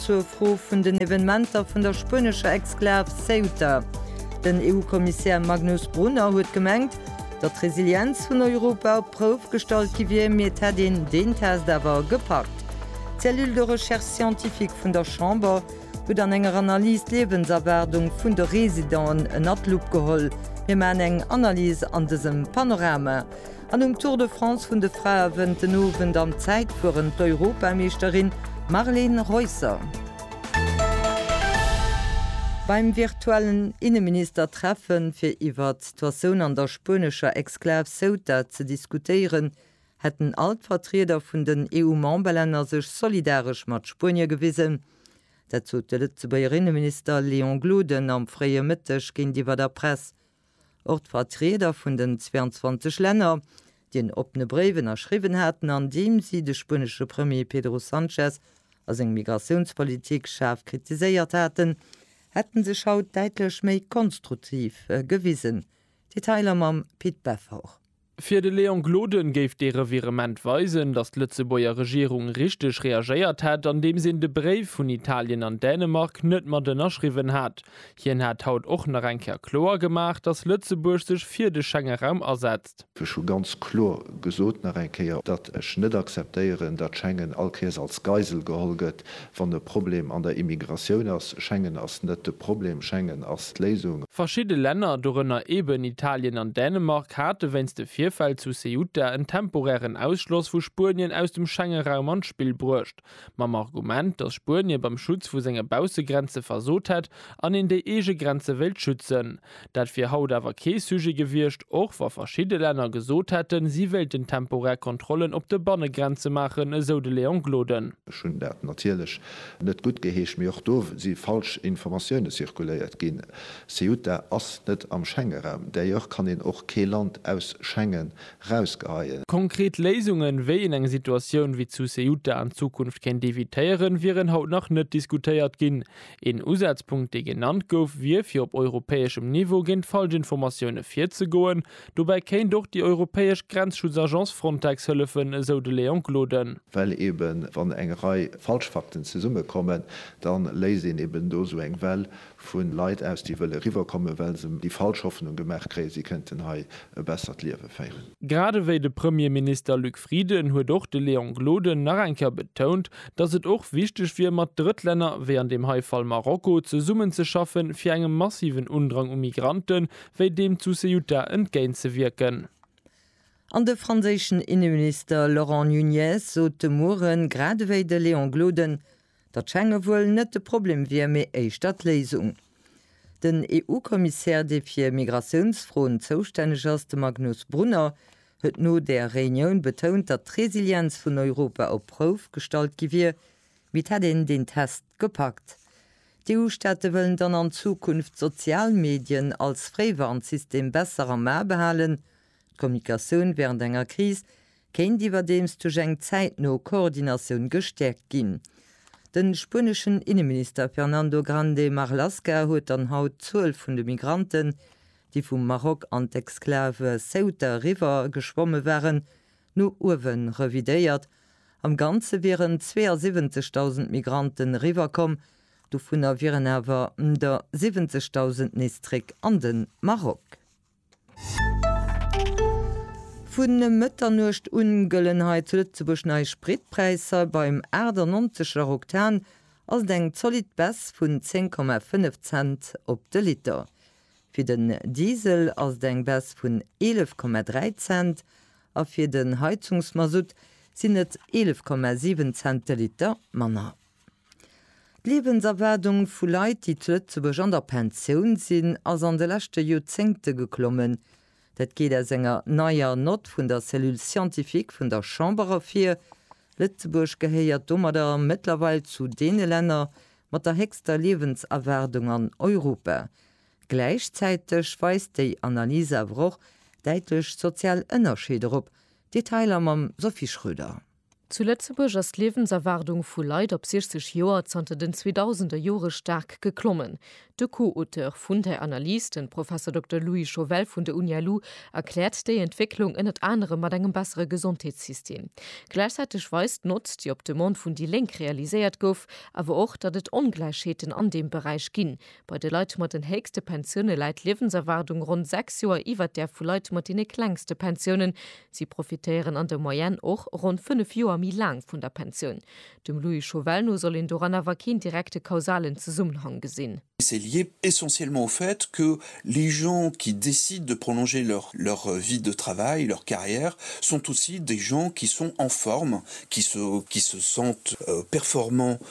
Zur Fro vun den Evenementer vun der spuenescher Exklav Ceuta, Den EU-Kommissär Magnus Brunner huet gemengt, datt d'Resilienz vun Europa op d'Prouf gestallt gi wier, mee et hätt een deen Test awer gepackt. D'Cellule de recherche scientifique vun der Chamber huet an enger Analys d'Liewenserwaardung vun de Residenten ënner d'Lupp geholl. Mir maachen eng Analys an dësem Panorama. An um Tour de France vun de Frae wënnt den Owend am Zäitfueren d'Europameeschterin Marleen Reusser. Beim virtuellen Inneministertreffen, fir iwwert d'Situatioun an der spuenescher Exklav Ceuta ze diskutéieren, hätten all d'Vertrieder vun den EU-Memberlänner sech solidaresch mat Spuenie gewisen. Dat sot de Lëtzebuerger Inneminister Léon Gloden am fréie Mëtteg géintiwwer der Press Och d'Vertrieder vun den 22 Länner, déi en oppene Bréif ënnerschriwwen haten, an deem si de spuenesche Premier Pedro Sanchez a seng Migratiounspolitik schaarf kritiséiert haten, hätte sech haut däitlech méi konstruktiv gewisen. Detailer mam Pit Beffort. Fir de Léon Gloden géif dee Revirement weisen, datt d'Lëtzebuerger Regierung richteg reagéiert hätt, andeems een de Bréif vun Italien an Dänemark net mat ënnerschriwwen hat. Hien hat haut och nach eng Kéier kloer gemaach, datt Lëtzebuerg sech fir de Schengeraum asetzt. Ech hu ganz kloer gesot, nach eng Kéier, datt ech net akzeptéieren, datt Schengen all Kéiers als Geisel geholl gëtt, Wann e Problem an der Immigratioun ass, Schengen ass net de Problem, Schengen ass d'Léisung. Verschidde Länner, dorënner eben Italien an Dänemark, hate wéinst de Virfäll zu Ceuta en temporären Ausschloss vu Spuenien aus dem Schengeraum an d'Spill bruecht, mam Argument, datt Spuenie beim Schutz vu senge Baussegrenze versot hätt an een déi eege Grenze wéilt schützen. Dat wier haut awer kee Sujet gewiescht, och wa verschidde Länner gesot hätten, si wéilten temporär Kontrollen op de Bannegrenze maachen, esou de Léon Gloden. Ech hunn dat natierlech net guttgeheescht, mee och do si falsch Informatioune zirkuléiert ginn. Ceuta ass net am Schengenraum, d'ailleurs kann een och kee Land aus Schengen rausgeheien. Konkret Léisungen, wéi een eng Situatioun wéi zu Ceuta an Zukunft kéint evitéieren, wieren haut nach net diskutéiert ginn. Een Usazpunkt dee genannt gouf, wier fir op europäeschem Niveau géint falschend Formatioune virzegoen. Dobäi kéint och déi europäesch Grenzschutzagence Frontex hëllefen, esou de Léon Gloden. Well eben wann eng Rei falsch Fakten zesummekommen, da léist een eben do esou eng Well vu Leit aus, déi wëlle riwwerkommen, well se déi falsch Hoffnung gemaach kréien, si kënnten hei e bessert Liewe féieren. Grad ewéi de Premierminister Luc Frieden huet och de Léon Gloden nach eng Kéier betount, datt et och wichteg wier mat Drëttlänner, wéi an deem hei Fall Marokko, zesummenzeschaffen, fir engem massiven Undrang u Migrante wéi deem zu Ceuta entgéintzewierken. An de franséischen Inneminister Laurent Nunez sot de Mueren, gradewéi de Léon Gloden, Datt Schengen wuel net de Problem wier, mee éischter d'Léisung. Den EU-Kommissär, dee fir Migratiounsfroen zoustänneg ass, de Magnus Brunner, huet no där Reunioun betount, datt d'Resilienz vun Europa op d'Prouf gestallt gi wier, mee et hätt een deen Test gepackt. D'EU-Staate wëllen dann an Zukunft d'sozial Medien als Fréiwarnsystem besser am A behalen. D'Kommunikatioun wärend enger Kris kéint iwwerdeems duerch eng zäitno Koordinatioun gestäerkt ginn. De spueneschen Inneminister Fernando Grande Marlaska huet dann haut d'Zuel vun de Migranten, déi vum Maroc an d'Exclave Ceuta eriwwer geschwomme waren, no uewe revidéiert. Am Ganze wieren 72.000 Migranten eriwwerkomm, dovunner wieren awer der 70.000 nees zréck an de Maroc. Vun Mëtternuecht un gëllen hei zu Lëtzebuerg nei Spritpräisser. Beim 98 Lar Oktan ass et eng zolidd Baisse vun 10,5 Cent op de Liter. Fir den Diesel ass et eng Baisse vun 11,3 Cent a fir den Heizungsmasutt sinn et 11,7 Cent de Liter manner. D'Liewenserwaardung vu Leit, déi zu Lëtzebuerg an der Pensioun sinn, ass an de leschte Joerzéngte geklommen. Dat geet aus enger neier Nott vun der Cellule scientifique vun der Chamber ervir. Lëtzebuerg gehéiert domadder mëttlerweil zu deene Länner mat der héchster Liewenserwaardung an Europa. Gläichzäiteg weist déi Analys awer och däitlech sozial Ënnerscheeder op. Detailer mam Sophie Schröder. Zu Lëtzebuerg ass d'Liewenserwaardung vu Leit op 60 Joer zanter den 2000er Jore staark geklommen. De Co-Auteur vun der Analys, de Professor Dokter Louis Chauvel vun der Uni lu, erkläert déi Entwécklung ënnert anerem mat engem bessere Gesondheetssystem. Gläichzäiteg weist d'Notz, déi op Demande vun déi Lénk realiséiert gouf, awer och, datt et Ongläichheeten an deem Beräich ginn. Bei de Leit mat den héchste Pensioune läit d'Liewenserwaardung ronn 6 Joer iwwert där vu Leit mat deene klengste Pensiounen, Si profitéieren an der Moyenne och ronn fënnef Joer méi laang vun der Pensioun. Dem Louis Chauvel no soll een doran awer keen direkte kausalen Zesummenhang gesinn. C'est lié essentiellement au fait que les gens qui décident de prolonger leur leur vie de travail, leur carrière, sont aussi des gens qui sont en forme, qui se qui se sentent performants,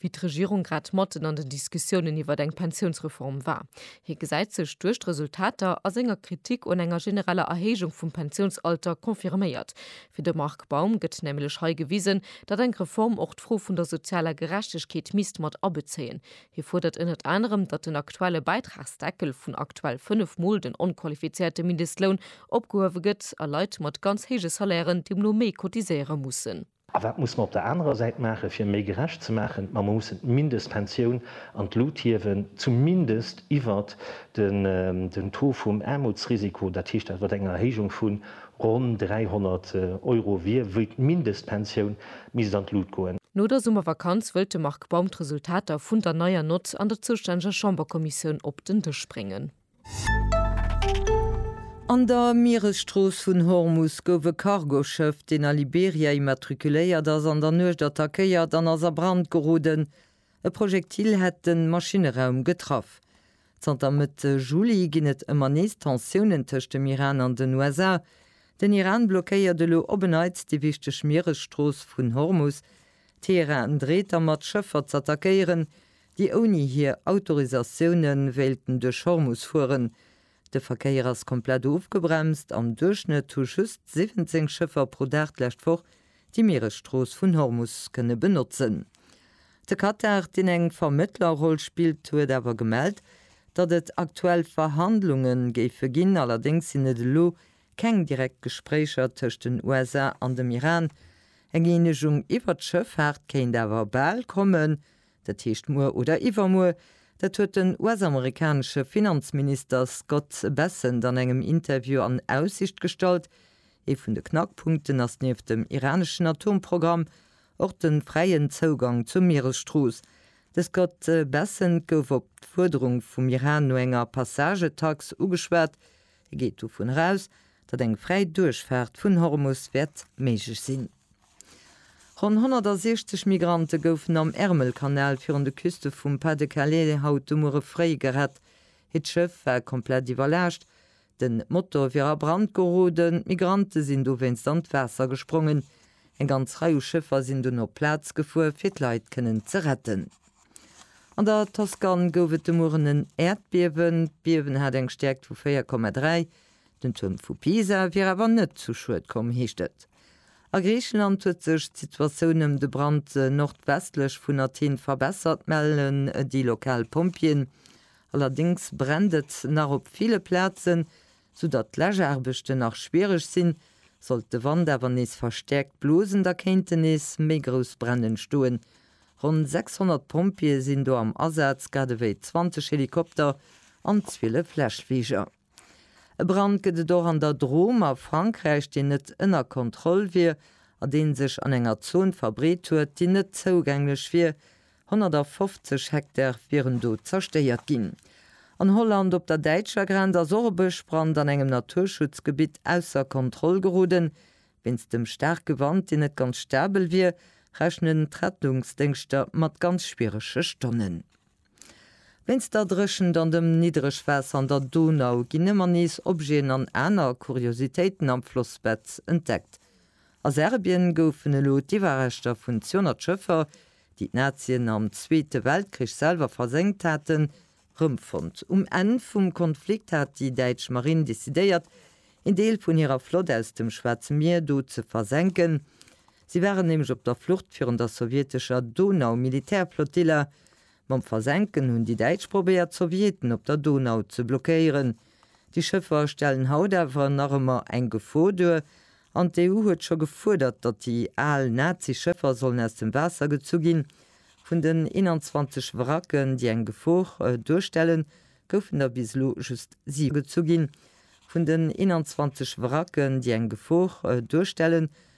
wéi d'Regierung grad matten an den Diskussiounen iwwert eng Pensiounsreform war. Hie gesäit sech duerch d'Resultater a senger Kritik un enger genereller Erhéijung vum Pensiounsalter confirméiert. Fir de Marc Baum gëtt nämlech hei gewisen, datt eng Reform och d'Fro vun der sozialer Gerechtegkeet misst mat abezéien. Hie fuerdert ënnert anerem, datt den aktuelle Bäitragsdeckel vun aktuell 5 Mol den onqualifizéierte Mindestloun opgehuewe gëtt a Leit mat ganz héije Salairen deemno méi cotiséiere mussen. A wat muss mer op der anerer Säit maachen, fir méi gerecht ze maachen? Ma mer mussen d'Mindestpensioun an d'Lut hiewen, zumindest iwwert den Taux vum Aarmutsrisiko, dat heescht dat wat eng Erhéijung vu ronn 300 Euro wier, wéi d'Mindestpensioun misst an d'Lut goen. No der Summervakanz wëllt de Marc Baum d'Resultater vun der neier Nott an der zoustänneger Chamberkommissioun op den Dësch bréngen. An der Mieresstrooss vun Hormus gouf e Cargoschëff, deen a Liberia immatrikuléiert ass, an der Nuecht attackéiert an ass a Brand geroden. E Projektil hätt de Maschinne-raum getraff. Zanter Mëtte Juli ginn et ëmmer nees Tensiounen tëscht dem Iran an den USA. Den Iran blockéiert elo op en Neits déi wichteg Mieresstrooss vun Hormus. Teheran dreet dermat, Schëffer z'attackéieren, déi ouni hir Autorisatioune wéilten duerch Hormus fueren. De Verkéier ass komplett ofgebremst. Am Duerchschnëtt hu just 17 Schëffer pro Dag d'lescht Woch déi Mieresstrooss vun Hormus kënne benotzen. De Katar, deen eng Vermëttlerroll spillt, huet awer gemellt, datt et aktuell Verhandlunge géife ginn. Allerdéngs sinn et elo keng direkt Gespréicher tëscht den USA an dem Iran. Eng Eenegung iwwer d'Schëffaart kéint awer bal kommen, Dat heescht muer oder iwwermuer. Dat huet den US-amerikanesche Finanzminister Scott Bessent an engem Interview an Aussicht gestallt. Ee vun de Knackpunkten ass nieft dem iraneschen Atomprogramm och de fräien Zougang zur Mieresstrooss. De Scott Bessent gouf op d'Fuerderung vum Iran no enger Passagetax ugeschwat. E geet dovun eraus, datt eng fräi Duerchfaart vun Hormus wäert méiglech sinn. Ronn 160 Migrante goufen am Ärmelkanal virun de Küste vum Pas-de-Calais haut de Muere fréi gerett. Hiert Schëff war komplett iwwerlaascht, den Motor wier a Brand geroden. D'Migrante sinn dowéinst an d'Waasser gesprongen. Eng ganz Rei u Schëffer sinn dunn op d'Plaz gefuer, fir d'Leit kënnen ze retten. An der Toskan gouf et de Mueren en Äerdbiewen. D'Biewen hat eng Stäerkt vu 4,3. Den Tuerm vu Pisa wier awer net zu Schued komm, heescht et. A Griicheland huet sech d'Situatioun ëm de Brand nordwestlech vun Athen verbessert, mellen déi lokal Pompjeeën. Allerdéngs brennt et nach op ville Plazen, soudatt d'Läschaarbechten nach schwiereg sinn. Sollt de Wand awer nees verstäerkt blosen, da kéinten nees méi grouss Bränn entstoen. Ronn 600 Pompjeeë sinn do am Asaz, grad ewéi 20 Helikopter an 12 Läschfliger. E Brand gëtt et och an der Drôme a Frankräich, deen net ënner Kontroll wier a deen sech an enger Zon verbreet huet, déi net zougänglech wier. 150 Hektar wieren do zerstéiert ginn. An Holland op der däitscher Grenz ass och e Bëschbrand an engem Naturschutzgebitt ausser Kontroll geroden. Wéinst dem staarke Wand, deen net ganz stabel wier, rechnen d'Rettungsdéngschter mat ganz schwierege Stonnen. Wéinst der Dréchent an dem Niddregwaasser an der Donau ginn ëmmer nees Objeten an aner Kuriositéiten am Flossbett entdeckt. A Serbien goufen elo d'Iwwerreschter vun 200 Schëffer, déi d'Nazien am Zweete Weltkrich selwer versenkt haten, rëmfonnt. Um Enn vum Konflikt hat déi däitsch Marinn decidéiert, een Deel vun hirer Flott aus dem Schwaarze Mier do ze versenken. Si waren nämlech op der Flucht virun der sowjetescher Donau-Militärflottille. Mam Versenken hunn déi Däitsch probéiert, d'Sowjeten op der Donau ze blockéieren. Déi Schëffer stellen haut awer nach ëmmer eng Gefor duer, an d'EU huet scho gefuerdert, datt déi al Nazi-Schëffer sollen aus dem Waasser gezu ginn. Vun den 21 Wracken, déi eng Gefor duerstellen, goufen der bis elo just siwe gezu ginn. Vun den 21 Wracken, déi eng Gefor duerstellen,